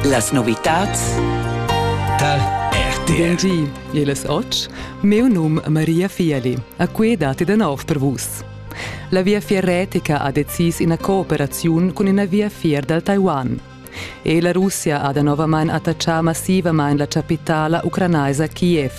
Las novitads tar RTR. Bun di, il es och. Meu num Maria Fieli. A que dati da nov per vus. La Viafier Retica ha decis ina cooperaziun cun ina viafier dal Taiwan. E la Russia ha da novamain attachà massivamain la chapitala ucranaisa Kiev.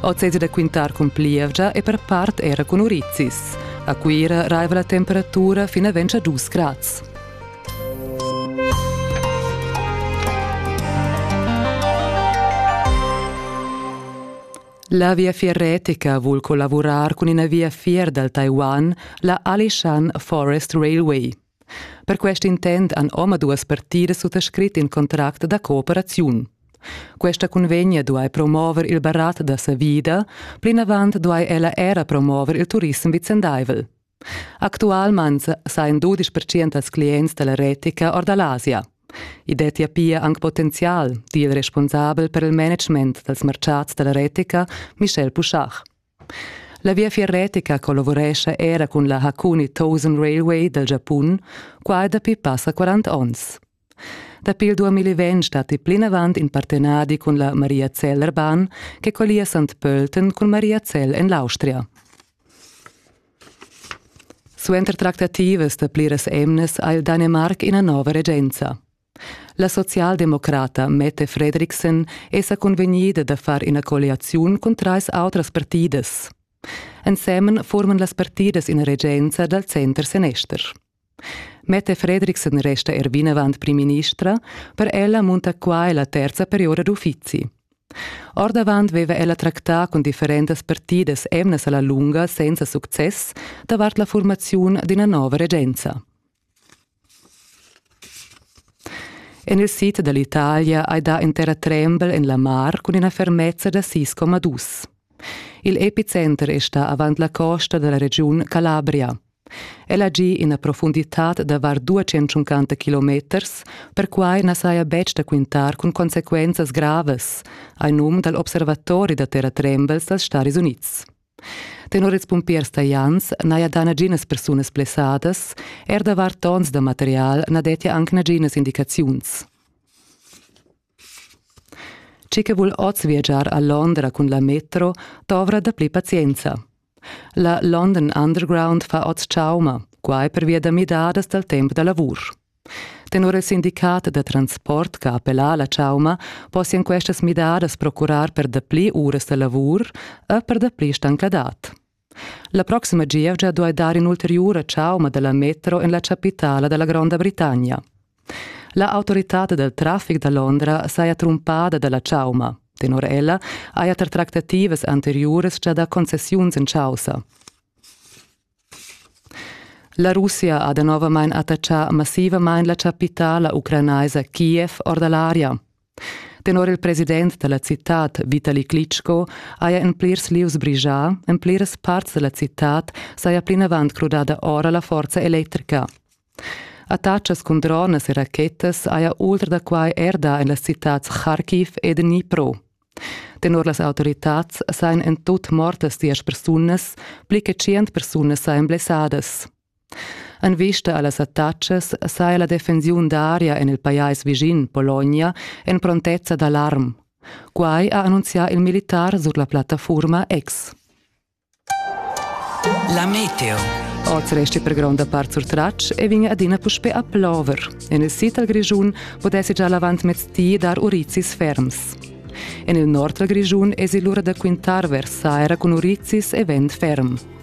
Oz è da quintar cun plievgia e per part era cun urizis. A Cuira raiva la temperatura fino a 22 grads. La Viafier retica vul collavurar cun ina viafier dal Taiwan, la Alishan Forest Railway. Per quest intent han omaduas partidas suttascrit in contract da cooperaziun. Questa convegna duai promover il barat da savida, plinavant duai ella era promover il turissem vicendaivel. Actualmain sajan dudisch percent dals clients da la retica or da l'Asia. I dettia pia anc potenzial, di il responsabel per il management dals martgads da la retica, Michel Pouchard. La viafier retica collavurescha era cun la Hakuni Thousand Railway dal Giapun, quai dapi passa 40 onns. Dapi il 2020 datti plinavant in partenadi cun la Maria Zeller-Bahn che collia Sant Pölten cun Maria Zell en l'Austria. Suenter tractativas da pliras emnas ha il Danemarc ina nova regenza. La socialdemocrata Mette Fredriksen è sa convegnida da far ina colliaziun cun trais autras partidas. Ensemen forman las partidas ina regenza dal center senester. Mette Fredriksen resta er vinavant primministra, per ella munta quai la terza periora d'uffizi. Ordavant veva ella tractà cun differentas partidas emnas alla lunga senza success davart la formaziun d'ina nova regenza. En il sid dall'Italia hai dà intera trembel en la mar cun ina fermezza da 6,2. Il epicenter è stà avant la costa dalla regiun Calabria. El ha gì ina profunditad da var duatschentschuncanta kilometers, perquai na saja betg da quintar cun consequenzas gravas, hai num dal observatori da terratrembels dals Stadis Unids. Tenor ils pumpiers talians n'haja dà naginas persunas blessadas, er da var tons da material na dettia anc naginas indicaziuns. Chi che vul oz viagiar a Londra cun la metro dovra dapli pazienza. La London Underground fa oz chauma, quai pervia da midadas dal temp da lavur. Tenor il sindicat da transport che ha appellà la chauma possian questas midadas procurar per dapli uras da lavur e per dapli stancladad. La proxima gievgia duai dar in'ulteriura chauma da la metro en la chapitala da la Gronda Britannia. La autoritad dal traffic da Londra saja trumpada da la chauma. Tenor ella haja tar tractativas anteriuras gia dà concessiuns en chaussa. La Russia ha danovamain attaccà massivamain la chapitala ucranaisa Kiev or da l'aria. Tenor il president dalla citad Vitali Klitschko haja en plirs lieus brigià, en pliras parts dalla citad saja plinavant crudada ora la forza electrica. Attachas cun dronas e rachetas haja ultra da quai er dà en las citads Kharkiv ed Dnipro. Tenor las autoritads sajan en tut mortas diesch persunas, pli che tschient persunas sajan blessadas. En vista a las attacas saja la defensiun d'aria en il pajais vischin, Pologna, en prontezza d'alarm. Quai ha annunzià il militar sur la plattafurma X. La meteo. Oz resti per gronda part surtratg e vegn adina puspè a plover. En il sid dal Grischun pudessi già l'avantmez di dar urizis ferms. En il nord dal Grischun èsi l'ura da quintar vers saira cun urizis e vent ferm.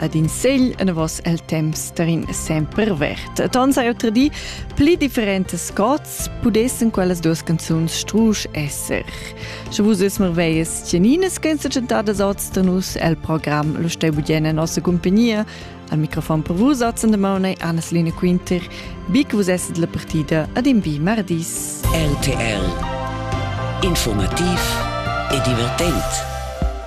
ad in segl enavos el temps terin sempre vert. Et ons hai otra di pli differentes cots pudessen quellas duas canzuns strusch esser. Sche vus es merveies tgeninas che sa chantadas ostanus el program lo stai budien en nossa compagnia al microfon per vus otzen de maune Anna-Selina Quinter bic vus esset la partida ad in vi mardis. RTL Informativ e divertent